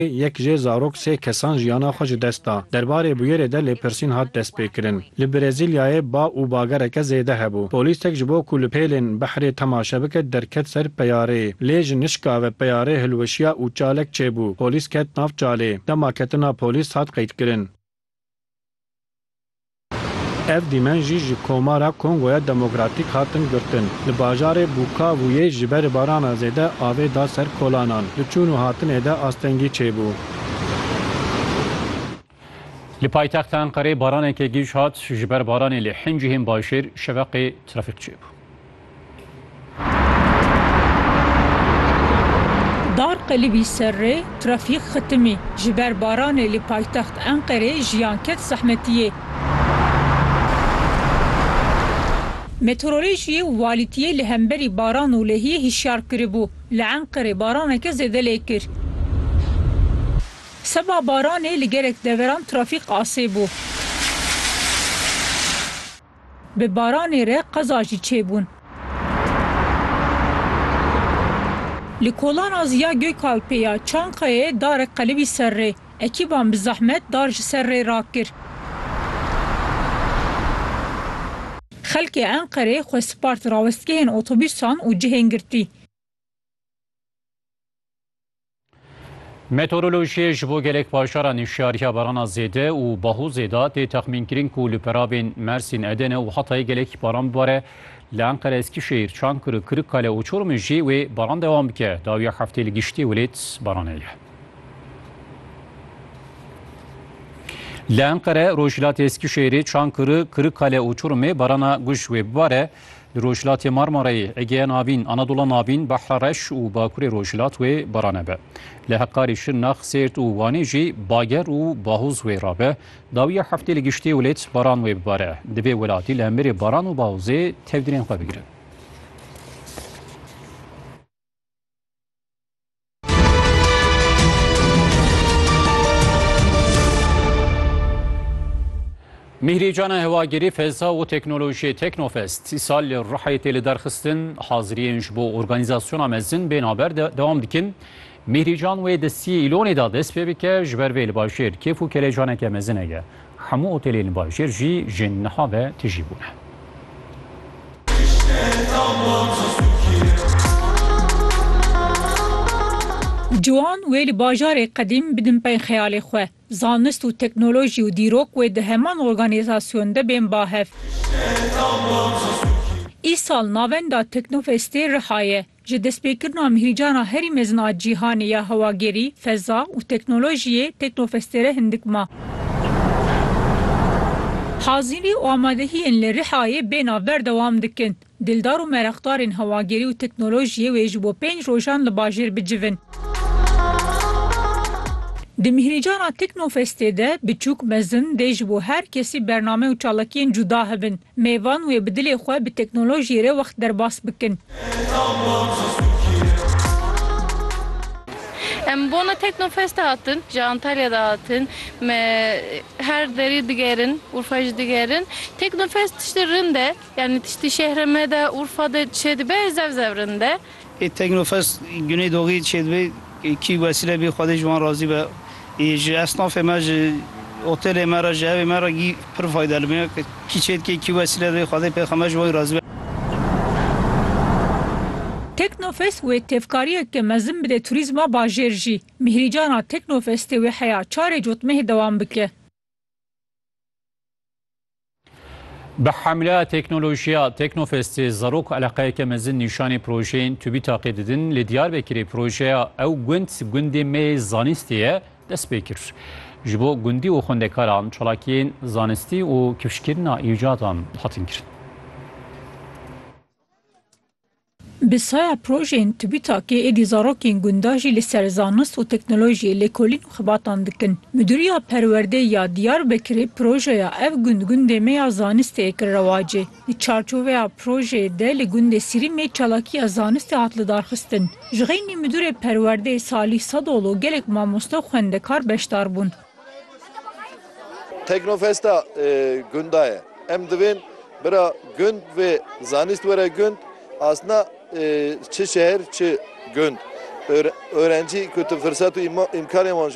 Yek jê zarok sê kesan jiyana xwe ji dest da. Derbarê bûyerê de lêpirsîn hat destpêkirin. Li Brezîlyayê ba û bagereke zêde hebû. Polîsek ji bo ku li pêlên behrê temaşe bike derket ser peyarê. Lê ji nişka ve peyarê hilweşiya û çalek çêbû. Polîs ket nav çalê. Dema ketina polîs hat qeydkirin. Ev dîmen jî ji Komara Kongoya Demokratîk hatin girtin. Li bajarê Bukavuyê ji ber barana zêde avê da ser kolanan. Di çûn û hatinê de astengî çêbû. Li paytexta Enqerê baraneke giş hat, ji ber baranê li hin cihên bajêr şeveqê trafîk çêbû. Dar qelibî serrê trafîk xitimî, ji ber baranê li paytext Enqerê jiyan ket zehmetiyê. Meteorolojiyê walîtiyê li hemberî baran û lehiyê hişyar kiribû, li Enqerê baraneke zêde lê kir. Seba baranê li gelek deveran trafîk asê bû. Bi baranê re qeza jî çêbûn. Li kolana ziya Gökalpê ya Çankayê darek qelibî ser rê. Ekîban bi zehmet dar ji ser rê rakir. Xelkê Enqerê xwe spart rawestgehên otobûsan û cihên girtî. Meteorolojiyê ji bo gelek bajaran hişyariya barana zêde û bahûzê da tê texmînkirin ku li peravên Mersîn, Edene û Hatayê gelekî baran bibare. Li Enqere, Eskîşehîr, Çankir û Kirikkale û Çorumê jî wê baran dewam bike. Dawiya heftê li giştî welêt baranê ye. Li Enqere, Rojhilatê Eskîşehîrê, Çankirê, Kirikkale û Çorumê barana guj wê bibare. Li Rojhilatê Marmarayê, Egeya Navîn, Anadola Navîn, Behra Reş û Bakurê Rojhilat wê barane be. Li Heqqarê, Şirnax, Sêrt û Wanê jî bager û bahoz wê rabe. Dawiya heftê li giştê wlêt baran wê bibare. Divê welatî li hemberê baran û bahozê tevdîrên xwe bigire. Mîhrî Cana Hewagirî Feza û Teknolojiyê Teknofest sî sal li Rihayê tê li derxistin haziriyên ji bo organîzasyona mezin bên haber dewam dikin. Mîhrî Can wê di sî îlonê de dest pê bike ji ber vê li bajêr kêf û kelecaneke mezin heye. Hemû otelên bajêr jî ji niha ve tijî bûne. Ciwan wê li bajarê qedîm bidin pey xeyalê xwe. Zanist û teknolojî û dîrok wê di heman organîzasyon de bên bahev. Îsal navenda Teknofestê Rihayê. Ji destpêkirina mihîcana herî mezin a cîhanê ya hewagerî, feza û teknolojiyê Teknofestêre hindik ma. Hazîrî û amadehiyên li Rihayê bêhna berdewam dikin. Dildar û mereqdarên hewagerî û teknolojiyê wê ji bo pênc rojan li bajêr bicivin. Di mihîrcana Teknofestê de biçûk, mezin dê ji bo her kesî bername û çalakiyên cuda hebin. Mêvan wê bi dilê xwe bi teknolojiyê re wext derbas bikin. Em bona Teknofestê hatin, ji Antalyayê de hatin. Me her derê digerin, Urfayê jî digerin. Teknofest tiştê rind e. Yanî tiştê şehra me de, Urfa de çêdibe, zev zev rind e. Ê Teknofest Güneydoğî çêdibê kî wesîle bê Xwedê ji wan razî be. Ê ji esnafê me ji otelê me re ji evê me re gî pir fayde li me ye. Kî çêdikê kî wesîle dibê Xwedê Pêxember ji wan razî be. Teknofest wê tevkariyeke mezin bide turîzma bajêr jî. Mîhrîcana Teknofestê wê heya çarê cotmehê dewam bike. Bi hemla teknolojiya Teknofestê zarok û eleqeyeke mezin nîşanê projeyên tûbî taqê didin. Li Diyarbekirê projeya Ew gund gundê me yê zanistê ye dest pê kir. Ji bo gundî û xwendekaran çalakiyên zanistî û kifşkirina îcadan hatin kirin. Bi saya projeyên TÜBİTAK'ê êdî zarokên gundan jî li ser zanist û teknolojiyê lêkolîn û xebatan dikin. Midûriya Perwerdeyê ya Diyarbekirê projeya Ev gund gundê me ya zanistê yê kir rewacê. Di çarçoveya projeyê de li gundê Sirîmê çalakiya zanistê hat lidarxistin. Ji xeynî Midûrê Perwerdeyê Salîh Sadoglu gelek mamoste û xwendekar beşdar bûn. Teknofesta gunda ye. Em divên bira gund vê zanîst were gund, asna çi şehir çi gund. Öğrencî ku tu firsat û îmkanên wan ji